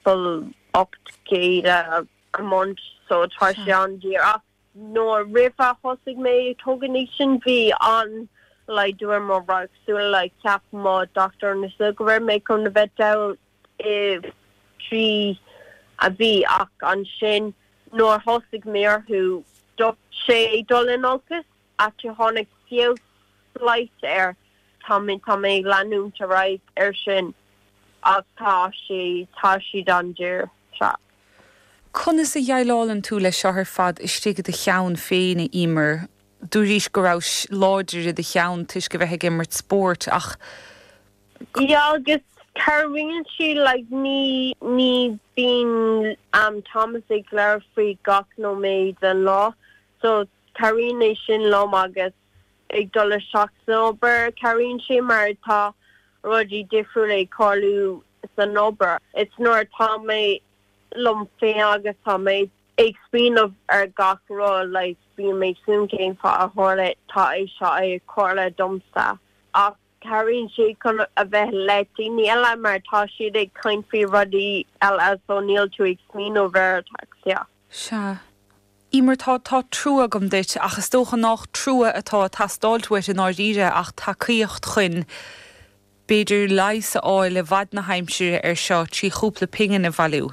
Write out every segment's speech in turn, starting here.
fuil 8 gcéad a month so tá sé an-daor ach nuair roimh a thosaigh mé ag tógaint iad sin bhí an-laghdú ar mo radharc súl, cheap mo dochtúir na súl go raibh mé chun a bheith dall i dtrí mhí ach ansin nuair thosaigh mé orthu stop sé ag dul in olcas. ach tháinig feabhas slight air, tá mé, tá mé ag leanúint ar aghaidh air sin ach tá sé, tá siad an-daor so. Conas a dheighleálann tú le seo ar fad istigh i do cheann féin a Emer? Dúraís go raibh láidir i do cheann toisc a bheith ag imirt spóirt ach. Yeah agus cabhraíonn sé like ní, ní bíonn Thomas ag labhairt faoi gach nóiméad den lá So, cabhraíonn é sin liom agus ag dul isteach san obair, cabhraíonn sé mar tá rudaí difriúla ag tarlú san obair. It's nuair atá mé liom féin agus tá mé ag smaoineamh ar gach rud, like, bíonn mé ag smaoineamh cén fáth a tharla, tá é seo ag tharla domsa. Ach. Cabhraíonn sé chun a bheith le daoine eile mar tá siad ag caint faoi rudaí eile so níl tú ag smaoineamh ar ataxia. Emer, tá, tá trua agam duit ach is dócha nách trua atá a' teastáilt uait i ndáiríre ach tacaíocht chuin b'fhéidir leigheas a fháil i bhfad na haimsire ar seo trí chúpla pingin a bhailiú.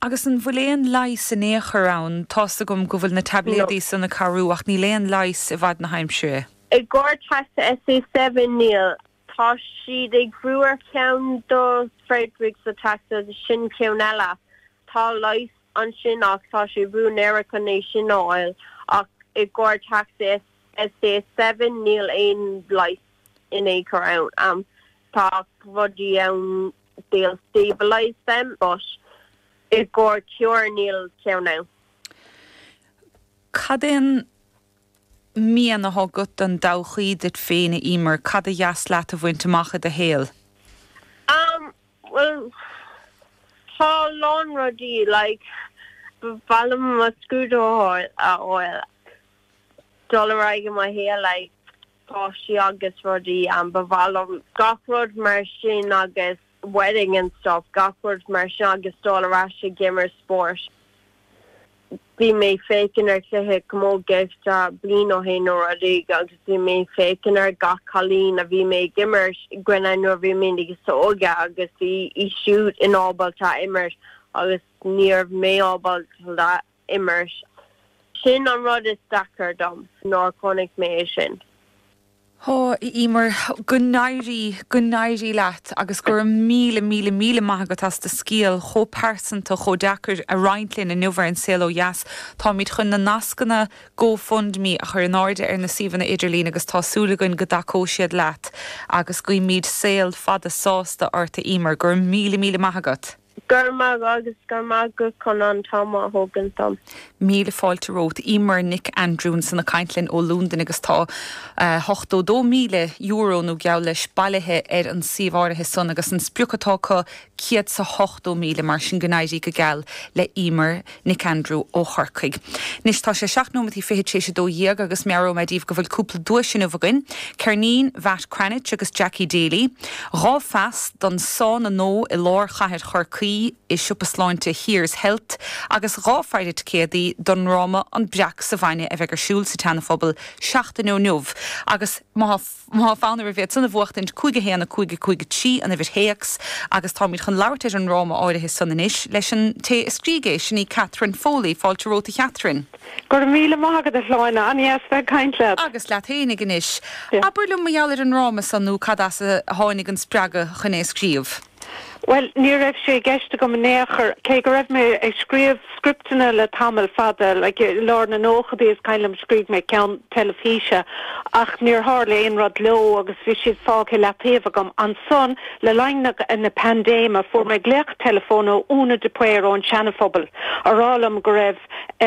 Agus an bhfuil aon leigheas in aon chor ann? Tá's agam go bhfuil na taibléadaí san ag cabhrú, ach níl aon leigheas i bhfad na haimsire. I gcomhair teasa SA Seven níl. Tá siad ag obair ar cheann do Friedreich's ataxia, sin ceann eile. Tá leigheas ansin ach tá sé ródhaor chun é sin a fháil. Ach i gcomhair the SCA Seven níl aon leigheas in aon chor ann. Tá rudaí ann. they'll stabilise them, but i gcóir cure níl ceann ann. Cad é an mian atá agat don dtodhchaí duit féin, a Emer? Cad a dheas leat a bhaint amach i do shaol? Am, bhuel, tá a lán rudaí, like, ba mhaith liom mo scrúdú a fháil, a fháil, dul ar aghaidh i mo shaol, like, páistí agus rudaí ann, ba mhaith liom gach rud mar sin agus wedding and stuff, gach rud mar sin agus dul ar ais ag imirt spóirt. Bhí mé féachaint ar chluiche camógaíochta bliain ó shin nó rud éigin agus bhí mé féachaint ar gach cailín a bhí mé ag imirt i gcoinne nuair a bhí mé níos óige agus bhí siad inábalta imirt agus níorbh mé ábalta. imirt. Sin an rud is deacair dom nár chonaic mé é sin. Ó, a Emer, go n-éirí, go n-éirí leat agus go raibh míle, míle, míle maith agat as do scéal chomh pearsanta, chomh deacair a roinnt linn inniu ar An Saol Ó Dheas. Táimid chun na nascanna Go Fund Me a chur in airde ar na suíomhanna idirlín agus tá súil againn go dtacóidh siad leat agus guímid saol fada sásta ort, a Emer. Go raibh míle, míle maith agat. Go raibh maith agat agus go raibh maith agat chun an t-am a thógaint dom. Míle fáilte romhat. Emer Nic Aindriú ansan ag caint linn ó Londain agus tá €82,000 nó geall leis bailithe ar an suíomh áirithe san agus an sprioc atá acu céad 's a hochtó míle, mar sin go n-éirí go geal le Emer. Nic Aindriú ó Chorcaigh. Anois tá sé seacht nóiméad is fiche tar éis a dó dhéag agus meabhróidh mé daoibh go bhfuil cúpla duais inniu againn, ceirnín Mhatt Cranitch agus Jackie Daly, dhá phas don sána nua i lár chathair Chorcaí i siopa sláinte Here's Health agus dhá phaire ticéadaí don ndráma An Breac sa Bhainne a bheidh ar siúl sa tSeanaphobal seachtain ó inniu agus má Más fonn oraibh iad san a bhuachtaint, 5 1 5 5 3 an uimhir théacs, agus táimid chun labhairt ar an ndráma áirithe san anois leis an té a scrígh é, sin í Catherine Foley. Fáilte romhat a Chatherine. Go raibh míle maith agat a Shláine, an-dheas bheith ag caint leat. Agus leat fhéinig anois. Abair liom mar gheall ar an ndráma san nó cad as a tháinig an spreagadh chun é a scríobh? Bhuel, ní raibh sé i gceist agam in aon chor, cé go raibh mé ag scríobh scripteanna le tamall fada, like, i lár na nóchadaí is cuimhin liom scríobh mé ceann teilifíse, ach níor tharla aon rud leo agus bhí siad fágtha i leataobh agam. Ansan, le linn na, na paindéime, fuair mé glaoch teileafóin ó Una de Paor ón Seanaphobal, a rá liom go raibh, eh,